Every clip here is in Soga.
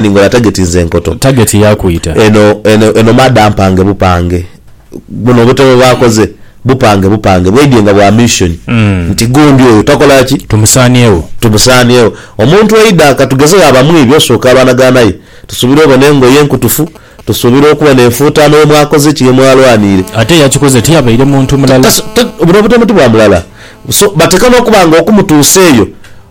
ningola tageti nze nkoto. Target ya kwita. Eno eno eno mada mpange bupange buno obutebe bwakoze bupange bupange bwaidye nga bwa mission nti gundi oyo takola ki? Tumusaaniegho. Tumusaaniegho. Omuntu aidha katugezegho aba mwibi osooka abanagana aye tusuubira obona engoye enkutufu. Tusuubira okuba n'enfuutaano ye mwakoze ki, ye mwalwaniire? Ate eyakikoze tiyabaire muntu mulala. Buno butemu ti bwa mulala. So, bateekwa n'okuba nga okumutuusa eyo,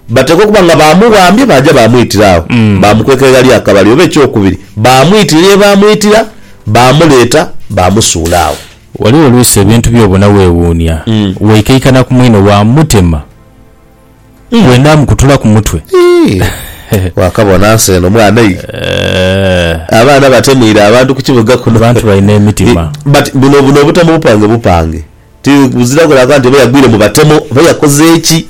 bateekwa okuba nga baamuwambye baaja baamwitira agho, baamukweka eghali akabale. Oba ekyokubiri, baamwitira ye baamwitira, baamuleeta, baamusuula agho. Ghaligho oluusi ebintu by'obona weewuunia, weikaikana ku mwine waamutema. Bwe nnaamukutula ku mutwe. Ii, Waakabona nsi eno mwana ei? Eeh. Abaana batemuire abantu ku kibuga kuno. Abantu balina emitima. Ii, But buno buno obutemu bupange bupange. Ti buzira kulanga nti oba yagwire mu batemu oba yakoze ki.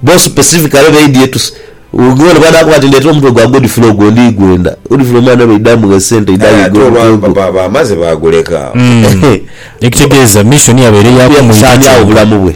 Bo specifically baidye to say, Ghugio ono bw'anaakoba ati ndeetera omutwe gwa Godfrey ogwo ndigwenda, Godfrey omwana baidha amugha esente aidha Aye ate ayigha omutwe olwagho ogwo. papa aba amaze baaguleka. Ekitegeeza mission yabaire ya Yakusaania agho kumwidha. obulamu bwe.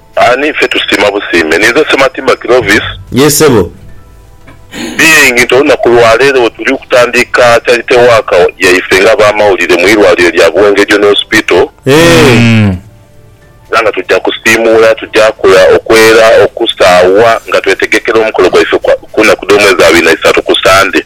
Ani ffe tusiima busiime. Ninze Sematimba Clovis. Yee sebo. Being nti olunaku lwa leero wetuli okutandika charity work yaife nga abamawulire mu irwaliro lya Buweng Regional Hospital, Eeh. era nga tujja kusiimuula, tujja kola okwera, okusaawa nga twetegekera omukolo gwaife ku naku dh'omwezi abiri na isaatu ku Sande.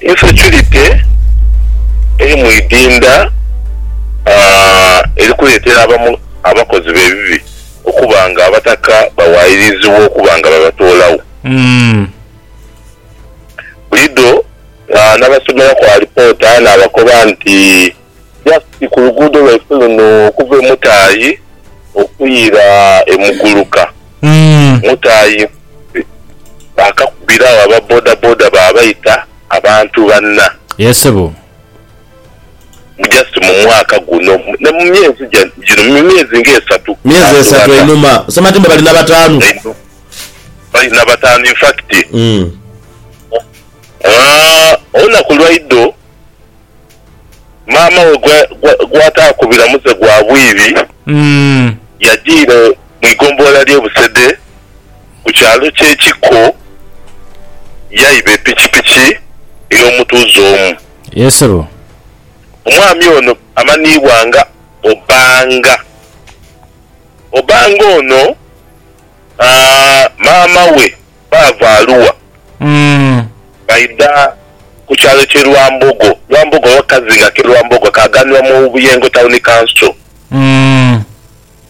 Insecurity eri mu idinda eri kuleetera abamu abakozi b'ebibi okuba nga abataka bawaayirizibwa okuba nga babatoolagho. Bulido n'abasomeraku alipoota n'abakoba nti. just ku luguudo lwaife luno okuva e Mutaayi okwira e Muguluka. Mutaayi Mbuzi baakakubira agho aba bodaboda baabaita abantu banna. Yee ssebo. Mbu just mu mwaka guno, na mu myezi gino, mu myezi ng'esatu. Myezi esatu einhuma. Osoma ati mbu bali na bataanu. Einhuma. Bali na bataanu in fact. Olunaku lwa idho. maama we gw'ataakubira muze gwa bwidhi yajiira mu igombolola ly'e Busede ku kyalo ky'e Kikko yaiba epikipiki ey'omutuuze omu. Omwami ono amanhiibwa nga Obanga. Obanga ono maama we. baava Arua baidha ku kyalo kye Lwambogo, Lwambogo oba kazinga ke Lwambogo akaaganibwa mu Buyengo Town Council.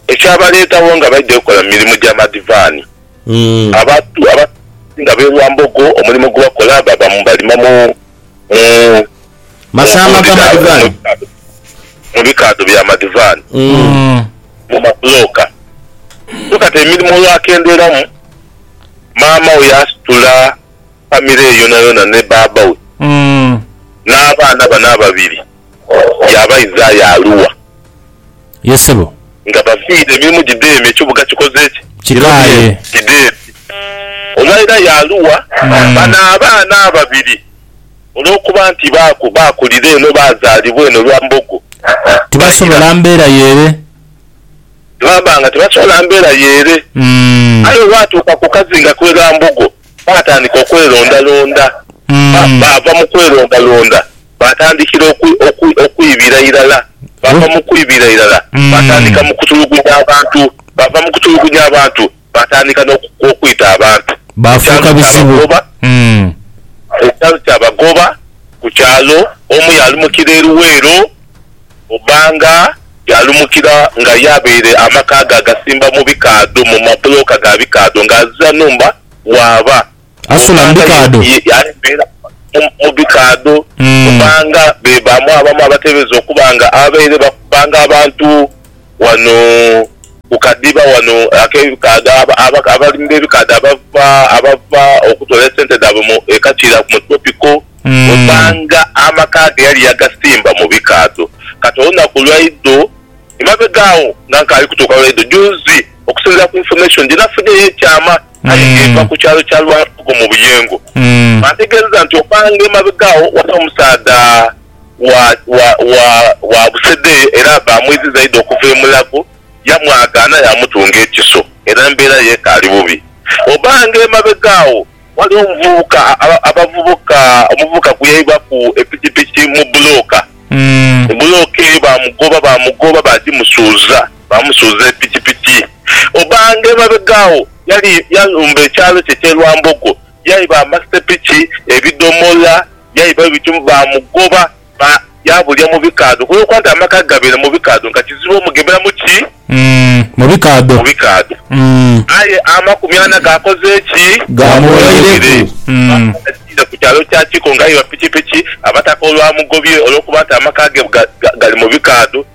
Ekyabaleetagho nga baidhye kukola mu mirimo gya madivaani. Abantu abasinga ab'e Lwambogo omulimo gwe bakola baba balima mu bikaadho bya madivaani, mu mabulooka. So kati emirimo olwakendeeramu. maama we yaasitula famire ye yonayona ni baaba we n'abaana bano ababiri yaabaidha aye Arua. Ye sebo. Nga bafiire emirimu gidheeme, ekibuga kikoze ki? Kikaaye. Kidheeme. Olwaira ye Arua, bano abaana ababiri olw'okuba nti baakulira eno, baazaalibwa eno lwa mbogo, baira. Tibasobola mbeera y'ere. Baaba nga tibaswala mbeera y'ere, aye olwatuuka ku kazinga kw'e Ghambogo baatandika okwerondalonda. Baava mu kwerondalonda baatandikira okwibira irala. Baava mu kwibira irala baatandika mu kutulugunya abantu. Baava mu kutulugunya abantu Baatandika n'okwita abantu ku kyalo kyabagoba ku kyalo kyabagoba ku kyalo omu yaalumukira e Luweero, Obanga yaalumukira nga ye abaire amaka ge agasimba mu bikaadho mu mabulooka ga bikaadho ng'azira nhumba waaba. Asula mu bikaadho? Mu bikaadho kubanga be bamu abamu abateebereza okuba nga abaire bakubanga abantu ghano ku kadhiba ghano ak'ebikaadho. Abalimi b'ebikaadho abava okutoola esente dhaabwe e Kakiira mu Tropical osanga amaka ge yali yagasimba mu bikaadho. Kati olunaku lwaidho emabega agho nga nkaali kutuuka lwaidho juuzi okusinziira ku information gye nafunye ey'ekyama. aye nga eva ku kyalo kya Lwatogo mu Buyengo. Baategeezezza nti okukaanga emabega agho waliwo omusaadha wa Busede era baamwidhi zaidi okuva e Mulago yamwagaana yaamutunga ekiso era embeera ye ekaali bubi. Obaanga emabega agho waliwo omuvubuka abavubuka omuvubuka gwe yaibwaku epikipiki mu bbulooka, bbulooka eyo baamugoba baamugoba baagimusuuza. Baamusuuza epikipiki obange emabega agho. Yali yalumba ekyalo kye eky'e Lwambogo, yaiba amasepiki, ebidhomola, yaiba ebituli. Baamugoba ba yaabulira mu bikaadho okulwokuba nti amaka ge gabaire mu bikaadho nga kizibu omugemera mu ki? Mu bikaadho. Mu bikaadho. Aye amakumi ana gaakoze ki? Gaamuweireku. Baalagiire ku kyalo kya Kiko ng'aiba pikipiki, Abataka olwamugobye olwokuba nti amaka ge ga gali mu bikaadho.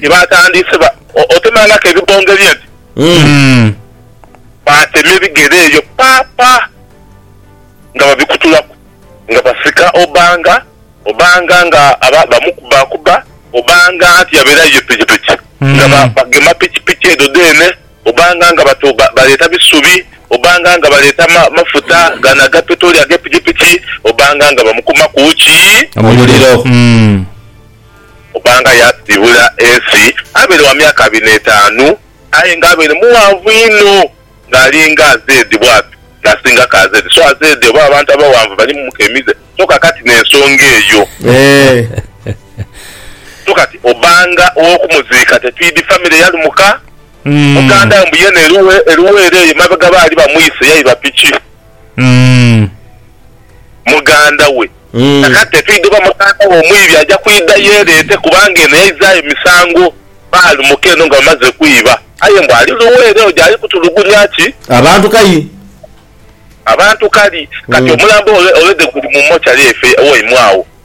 Ni baatandise ba otemangaku ebibonge bye nti mm, baatema ebigere eyo pa pa nga babikutulaku nga basika Obanga, Obanga nga aba bamukubakuba, Obanga anti yabeerayo ye pikipiki nga ba bagema pikipiki edho dheene, Obanga nga bato ba baleeta bisubi, Obanga nga baleeta ma mafuta gano aga petroli ag'epikipiki, Obanga nga bamukumaku ki? Omuliro. Kubanga yaasiibula ensi abaire wa myaka abiri n'etaanu, aye nga abaire mughanvu inho, ng'ali nga Azedi bw'ati, ng'asingaku Azedi. So Azedi oba abantu abaghanvu bali mumuka emize? So ka kati n'ensonga eyo. So kati obanga ow'okumuziika tetwidhi famire yalumuka, muganda we mbu yena eruwa? Eruwa era eyo emabega baali bamwise yaiba piki? muganda we. Kakati etwidha oba muganda we omwibi aja kwidha yeereete kubanga eno yaizaayo misango Bbaali muka eno nga bamaze kwiba. Aye mbu ali luweere oja ali kutulugunya ki? Abantu kai? Abantu kali. Kati omulambo already guli mu mochari eifo ewaimwe agho.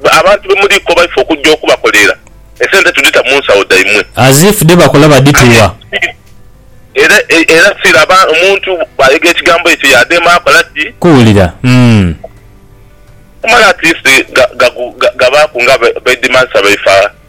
Mwe abantu be muliiko baife okujja okubakolerera, esente tudhita mu nsawo dhaimwe. As if dhe bakola badhituwa. Era, era si laba omuntu bw'ayogera ekigambo ekyo yaadhema akola ki? Kuwulira. Umm. Kumala at least ga, ga, ga, gabaaku nga baidhimagisa baife.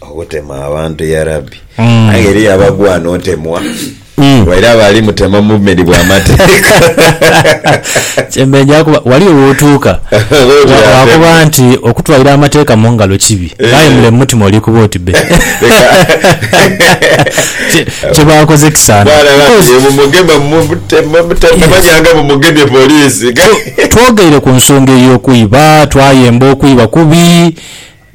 Obutema abantu ya Rabbi. Aye eriyo abagwana otemwa waire abo ali mutema mu bumedi bwa mateeka. Kyemenyaa kuba wali wootuuka Oti wa- atemwe. waakoba nti okutwalira amateeka mu ngalo kibi, aye mule mu mutima olikuba oti bbe. Kye- Kye baakoze kisaana. Bwana Rabbi Because ye bumugema mu butema butema Yes. manyanga bumugemye poliisi. twogeire ku nsonga ey'okwiba, twayemba okwiba kubi,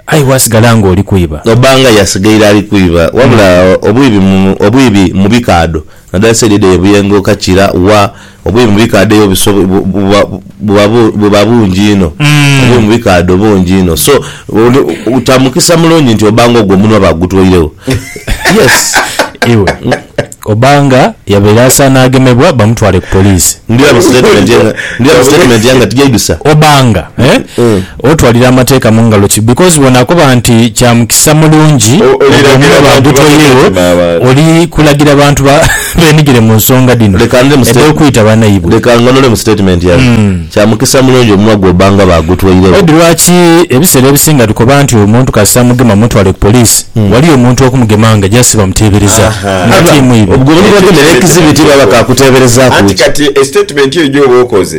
Aye bwasigala nga oli kwiba. Oba nga yasigaire ali kwiba. Wabula obwibi mu obwibi mu bikaadho nadala saidi edho ye Buyengo, Kakira, wa, obwibi mu bikaadho eyo buso buba buba buba bungi inho. Obwibi mu bikaadho bungi inho. So oli kya mukisa mulungi nti oba nga ogwo omunwa bagutweiregho. Yes. Iwe. Obanga yabaire asaana agemebwa bamutwale ku poliisi. Ndidha mu sitatimenti yange ndidha mu sitatimenti yange ati gyaidhusa. Obanga otwalira amateeka mu ngalo ki because bw'onaakoba nti kya mukisa mulungi oguume bagutoyeegho oli kulagira bantu beenhigire mu nsonga dhino edh'okwita banaibwe. Leka nganule mu sitatimenti yange. Kya mukisa mulungi omunwa gwo bba nga baagutweiregho. Ed Lwaki ebiseera ebisinga tukoba nti omuntu kasita amugema mutwale ku poliisi, ghaliyo omuntu okumugema nga just bamuteebereza? Nga tiimu ibe. Obwo ni bwogema era ekizibiti baba ka kuteeberezaaku Anti ki? kati statement eyo gy'oba okoze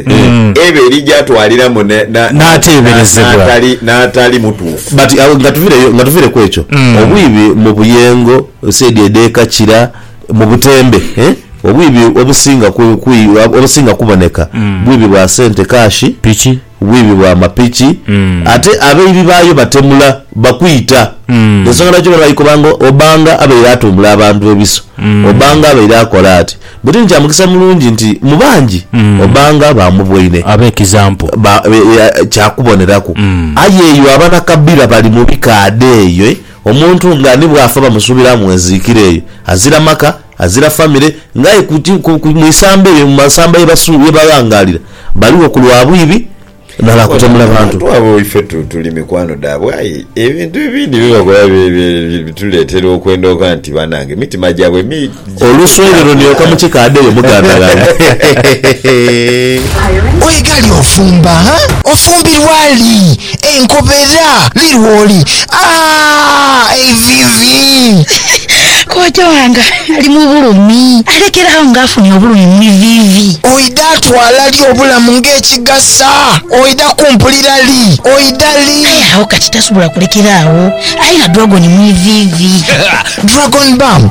eba eri gya twaliramu N'ateeberezebwa. n'atali mutuufu. But nga tuviire nga tuviire kwekyo, obwibi mu buyengo, said edh'eka Kira, mu butembe. Obwibi obusinga obusinga kuboneka bwibi bwa sente, kaashi, bwibi bwa mapiki ate abaibi baayo batemula bakwita. Y'ensonga lwaki obona baikoba nga Obanga abaire atumbula abantu ebiso, Obanga abaire akola ati. Buti ni kya mukisa mulungi nti mu bangi Obanga baamuboine kya kuboneraku. Aye eyo abanakabira bali mu bikaadha eyo. Omuntu nga ni bw'afa bamusuubira mu nziikira eyo azira maka, azira famire, ng'aye ku ki, ku, ku, mu isamba eryo, mu masamba ye basu, ye baghangaalira, baligho ku lwa bwibi na lwa kutemula bantu. Abantu abo ife tu, tuli mikwano dhaabwe, aye ebintu ebindi bye bakola bye, bye, bye bituleetera okwenda okukoba nti, Banange, emitima gyabwe mi. Oluswayirilo nioka mu kika adeyo mugandaghala. Oye gali ofumba ha? Ofumbirwa li? Enkobera li lwoli? Aah eivivi. Kojja wange ali mu bulumi. Alekera agho nga afunye obulumi mu ivivi. Oidha twala li obulamu nga ekigasa? Oidha kumpulira li? Oidha li? Aye agho kati tasobola kulekera agho. Aye na dragon mu ivivi. Dragon balm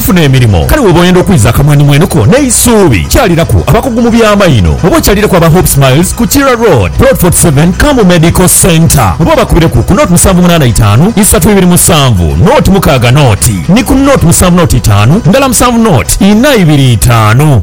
Funa emirimo. Kale woba oyenda okwiza akamwenumwenu ko n'eisuubi, kyaliraku abakugu mu bya maino oba okyalireku aba Hope Smiles ku Kira Road, Plot 47, Kambu Medical Centre oba obakubireku ku nought musanvu munaana itaanu isatu ibiri musanvu nought mukaaga nought ni ku nought musanvu nought itaanu ndala musanvu nought inha ibiri itaanu.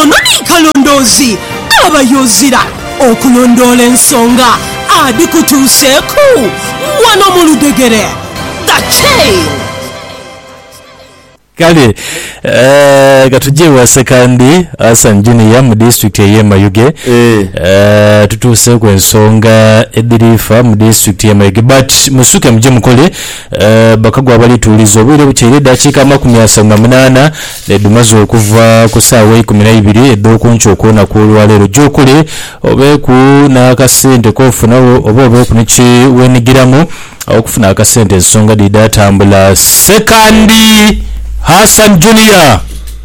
Ono ni kalondoozi abayo ozira okulondoola ensonga adhikutuuseeku wano mu ludhegere. The Chain. Kale eh, ka tuje ewa Ssekandi Hassan Junior mu disitulikiti ey'e Mayuge Eh. eh, tutuuseeku ensonga edhiri fa mu disitulikiti y'e Mayuge but musuke muje mukole Bakagwa balituuliza obwire butyaire eddakiika amakumi asatu na munaana dhedhumaze okuva ku saawa eikumi na ibiri edh'oku nkyo okw'olunaku olwaleero. Gyokole obeeku n'akasente k'ofunagho oba obeeku ni kye weenhigiramu okufuna akasente ensonga dhidha tambula. Ssekandi Hassan Junior.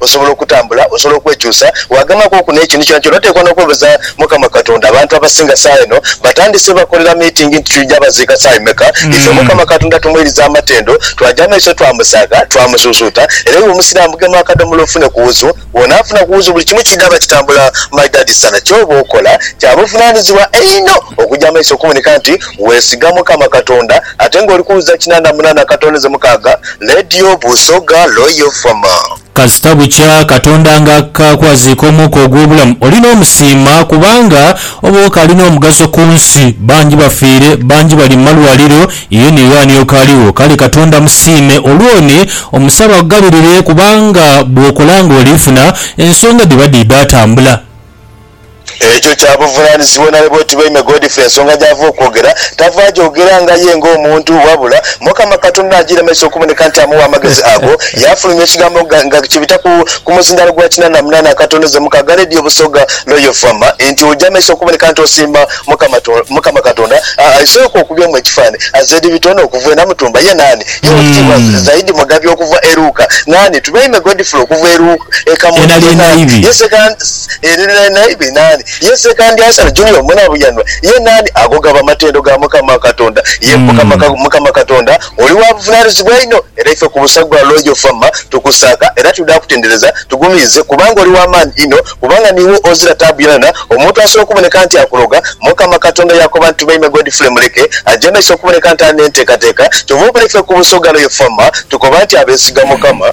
Osobola okutambula, osobola okwekyusa, waagamaku oku n'ekintu kyonakyona. Oteekwa n'okwebaza Mukama Katonda. Abantu abasinga saagha eno batandise bakolera miitingi nti twija baziika saa imeka. Ife Mukama Katonda tumwiriza amatendo, twaja amaiso twamusaagha, twamusuusuuta. Era iwe Omusiraamu gema akadhomola ofune ku wuzu. Bw'onaafuna ku wuzu buli kimu kidhaaba kitambula maidadi sana. Ky'oba okola kya buvunaanyizibwa einho okuja amaiso okuboneka nti weesiga Mukama Katonda ate ng'oli ku wuza kinaana munaana katooneze mukaaga. Lady Obusoga Royal Farmer. Kasita bukya Katonda nga akakwaziika omwoka ogw'obulamu, oli n'omusiima kubanga oba okaali n'omugaso ku nsi. Bangi bafiire, bangi bali mu malwaliro, ye ni ghaani okaaliwo. Kale Katonda musiime olw'oni, omusabe akugabirire kubanga bw'okola ng'oliifuna, ensonga dhiba dhiidha atambula. Ekyo kya buvunaanyizibwa nale bwetubaime Godfrey ensonga gy'ava okwogera tava agyogera nga ye ng'omuntu wabula Mukama Katonda n'agiiremesa okuboneka nti amuwa amagezi ago yaafulumya ekigambo nga kibita ku muzindaalo gwa kinaana munaana akatono ze mukaaga Radio Busoga Royal FM nti ogyamesa okuboneka nti osiima Mukama Katonda aisooka okubyamu ekifaananyi Azedi Bitono okuva e Namutumba ye naani ye Wekitiibwa Zaidi Mugabi okuva e Luuka naani Tubaime Godfrey okuva e Kamuli ye naani ye Yesu ere nali naibe naani? Ye Sekandi Asali Junior Munabuyanwa ye naani? Ago gaba matendo ga Mukama Katonda. Ye Mukama Katonda oli wa buvunanizibwa inho, era ife ku busa gwa Royal Fama tukusaaka era twidha kutendereza. Tugumiize kubanga oli wa maani inho, kubanga niiwe ozira taabu yonayona. Omuntu asobola okuboneka nti akuloga? Mukama Katonda yaakoba nti, Tubaime Godfrey Muleke aje maiso okuboneka nti ali n'enteekateeka. Kyova obona ife ku busa gwa Royal Fama tukoba nti abeesiga Mukama.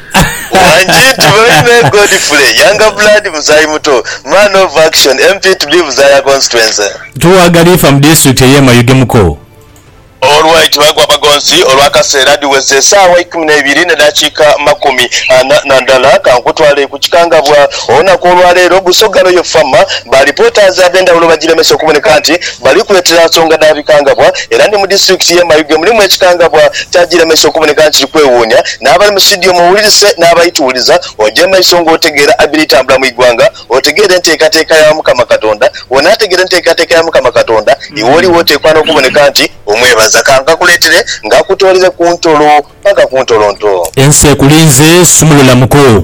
Wangi nti baine Godfrey Younger Blood Muzayi Muto, Man of Action, MP to be Buzaaya Constituency. Tuwa Galiifa mu Disitulikiti ey'e Mayuge Muko. Olw'ekyo bagwa bagonzi olw'akaseera dhiweze esaawa ikumi n'eibiri n'edhakiika makumi ana na ndala. Ka nkutwale ku kikangabwa. Olunaku olwaleero Busoga Royal Farmer ba Reporters ab'endhawulo bagiremesa okuboneka nti bali kwetera nsonga dha bikangabwa era ni mu Disitulikiti y'e Mayuge mulimu ekikangabwa kyagiremesa okuboneka nti kiri kwewuunya N'abali mu situdiyo muwulirise n'abali tuwuliza, oje mu maiso ng'otegeera abiri tambula mu igwanga, otegeere enteekateeka ya Mukama Katonda. Bw'onaategeera enteekateeka ya Mukama Katonda, iwe oliwo oteekwa n'okuboneka nti omwebaza. Ka nkakuleetere nkakutoolere ku ntolo paka ku ntolonto. Ensi ekulinze, sumulula muko.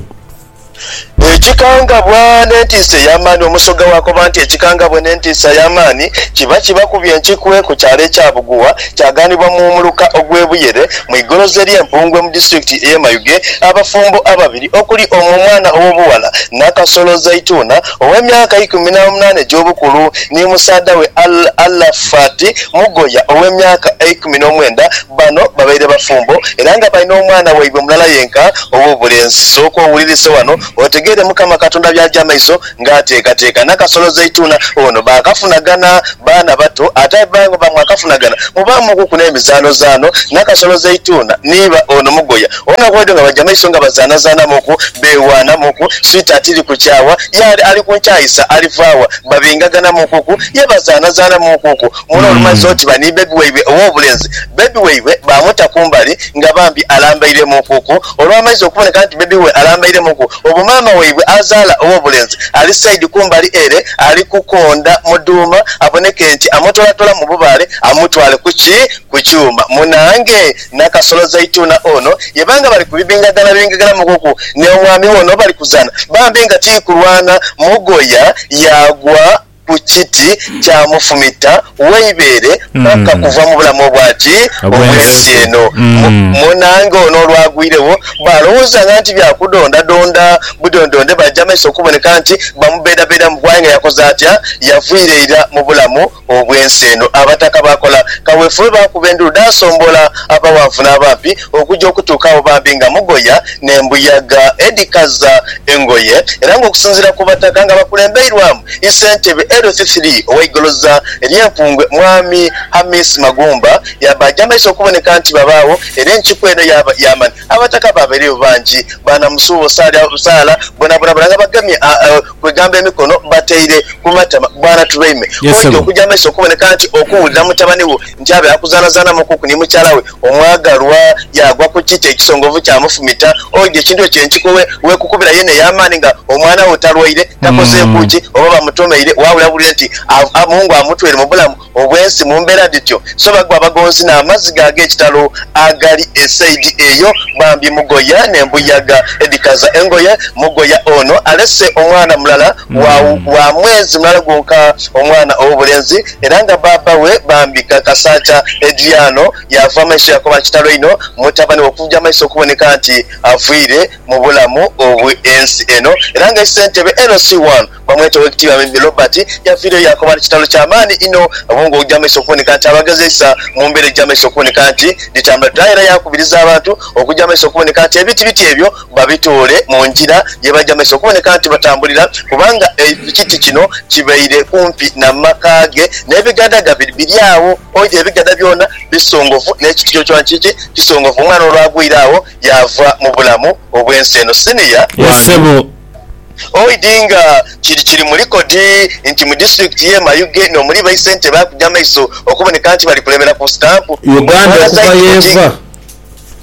Ekikangabwa n'entiisa ey'amaani. Omusoga bw'akoba nti ekikangabwa n'entiisa ey'amaani, kiba kibakubye enkikwe ku kyalo ekya Bugugha, kyagaanibwa mu muluka ogw'e Buyere mu igoroza ery'e Mpungwe mu disitulikiti ey'e Mayuge, abafumbo ababiri okuli omu omwana ow'obughala Nakasolo Zaituna ow'emyaka eikumi n'omunaana egy'obukulu ni musaadha we Al Alafat Mugoya ow'emyaka eikumi n'omwenda Bano babaire bafumbo era nga balina omwana waibwe mulala yenka ow'obulenzi. Sooka owulirise wano otegeere Mukama Katonda by'aja amaiso ng'ateekateeka. Nakasolo Zaituna ono baakafunagana baana bato ate aye bba nga bwamwakafunagana mubaamuukuku n'emizaanozaano. Nakasolo Zaituna ni bba ono Mugoya olunaku lwaidho nga baja amaiso nga bazaanazaanamuuku, beewaanamuuku, sweetheart li ku kyawa, ye ali ku nkyaisa alivaagha, babingaganamuukuku, ye bazaanazaanamuukuku. Muno olumazze otiba ni bbebi waibwe ow'obulenzi, bbebi waibwe baamuta ku mbali nga bambi alambairemuukuku. Olwamaize okuboneka nti bbebi we alambairemuuku, obwo maama waibwe azaala ow'obulenzi ali saidi ku mbali ere ali kukonda Muduuma aboneke nti amutolatola mu bubaale amutwale ku ki? Ku kyuma. Munaange Nakasolo Zaituna ono yeba nga bali kubibingaganabingaganamuukuku n'omwami we ono bali kuzaana bambi nga tiikulwana, Mugoya yaagwa. ku kiti kya mufumita w'eibeere paka kuva mu bulamu obwa ki? Obw'ensi eno. Monange ono olwagwiregho baalowoozanga nti bya kudondadonda budondonde baja amaiso okuboneka nti bamubeedabeedamu kuba aye nga yakoze atya? Yavira ira mu bulamu obw'ensi eno. Abataka baakola kawefube baakuba endulu dhaasombola abaghanvu n'abampi okuja okutuuka agho bambi nga mugoya n'embuyaga edhikaza engoye era nga okusinziira ku Bataka nga bakulembeirwamu yi Ssentebe LC three owa Igoloza erye Mpungwe Mwami Hamis Magumba yabaaja amaiso okuboneka nti babaagho era enkiiko eno yaaba yamani Abataka baabaireyo bangi baana Musuubusaala bonabona bona nga bagemye kwegamba emikono bateire ku matama bwana Turaime kwoidha okuja maiso okuboneka nti okuwulira mutabani wo nti abe akuzanazanamukuku ni mukyala we omwagalwa yagwa ku kiti ekisongovu kyamufumita oidha ekintu ekyo enkiko wekukubira yene eyamaani nga omwana wo talwaire takozeeku ki oba bamutomeire wawulira buwulire nti Mungu amutwaire mu bulamu obwensi mu mbeera dhityo, so bagwa bagonzi n'amaziga ag'ekitalo agali e saidi eyo. Bambi mugoya n'embuyaga edhikaza engoye. Mugoya ono alese omwana mulala wa wa mwezi mulala gwonka, omwana ow'obulenzi, era nga bbaabba we bambi Kakasaacha Edriano yaava amaiso yakoba kitalo inho mutabani we okuja amaiso okuboneka nti avwire mu bulamu obw'ensi eno era nga eisentebe LC1 Bamweta Owekitiibwa Mimi Robert yaviireyo yaakoba nti kitalo kya maani inho obwo nga ogya maiso okuboneka nti abagezeisa mu mbeera egya maiso okuboneka nti dhitambula dha era yaakubiriza abantu okugya maiso okuboneka nti ebiti biti ebyo babitoole mu ngira ye bagya maiso okuboneka nti batambulira kubanga ekiti kino kibaire kumpi na maka ge n'ebigada ga biri agho oidha ebigada byona bisongovu n'ekiti kyo kyo kiki kisongovu omwana olwagwire agho yaava mu bulamu obw'ensi eno Senior wange. Oidhi nga kiri kiri mu likodi nti mu disitulikiti ye Mayuge n'omuli baisentebe akuja amaiso okuboneka nti bali kulebera ku sitampu Uganda Mwana okuva zaidi mugi yeeva.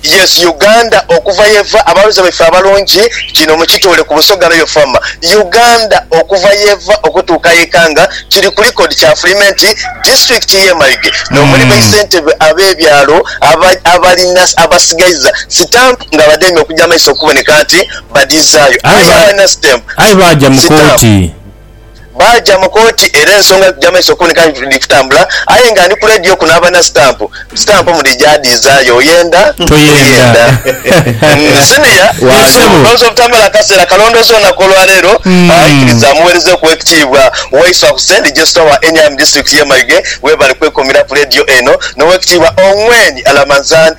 Yes Uganda okuva yeva abaloza baife abalungi kino mukitoole ku Busoga Royal Farmer Uganda okuva yeva okutuuka yeka nga kiri ku likodi kyafulime nti disitulikiti ye Mayuge n'omuli baisentebe ab'ebyalo aba abalina abasigaiza sitampu nga bademye okuja amaiso okuboneka nti badhizaayo. Aye Aye abalina stamp aye baaja mu sitampu kooti. baaja mu kooti era ensonga dhija mu maiso okuwunika nti dhiri kutambula aye nga ndi ku leediyo kuno abalina sitampu, sitampu mudhija adhizaayo oyenda Toyenda. toyenda. Mm, Siniya Waali. Ssebo. olowooza obutamala kaseera kalondoozi olunaku olwaleero? Aye kkiriza mmuweereze okuwa ekitiibwa Waiswa Hussein Digesita wa Eniam Disitulikiti y'e Mayuge. Weebale kwekumira ku leediyo eno n'owekitiibwa Ongwen Alamanzan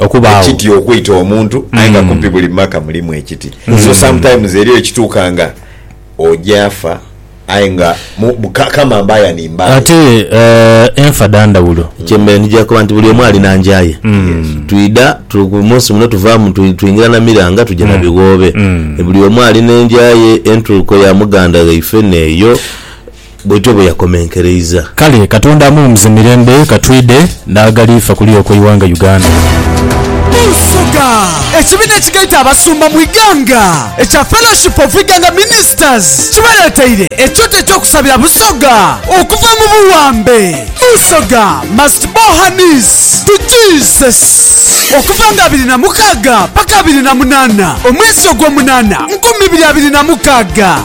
Okubaagho. ekiti okwita omuntu aye nga kumpi buli mumaka mulimu ekiti so sometimes eriyo ekituuka nga oja afa aye nga mu- bu- ka- kama mbaya ni mbaya. Ate eh, enfa dha ndhawulo. Kyembeire nija koba nti buli omu alina nja ye. Twidha tu- ku munsi muno tuvaamu twi- twingira na miranga tuja na bighoobe. Buli omu alina enja ye, entuuko ya muganda ghaife n'eyo. bwetyo bwe yakomenkereiza. Kale Katonda amuwumuze mirembe katwidhe n'aghali fa kuli okwo eighanga Uganda. Munsoga, ekibiina ekigaita abasumba mu Iganga ekya Fellowship of Iganga Ministers kibaleteire ekyoto ekyokusabira Busoga okuva mu buwambe. Busoga must bow her knees to Jesus. Okuva nga abiri na mukaaga paka abiri na munaana omwezi ogwomunaana nkumi ibiri abiri na mukaaga.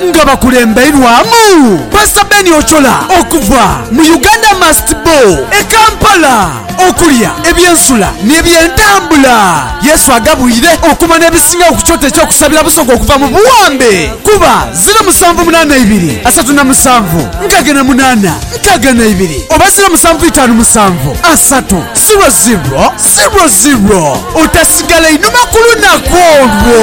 nga bakulembeirwamu Pastor Ben Ochola okuva mu Uganda Must Bo e Kampala. Okulya, eby'ensula ni eby'entambula Yesu agabwire okuba n'ebisingawo ku kyoto eky'okusabira Busoga okuva mu buwambe kuba ziro musanvu munaana ibiri asatu na musanvu nkaga na munaana nkaga na ibiri oba ziro musanvu itaanu musanvu asatu ziro ziro ziro ziro otasigala inhuma ku lunaku olwo.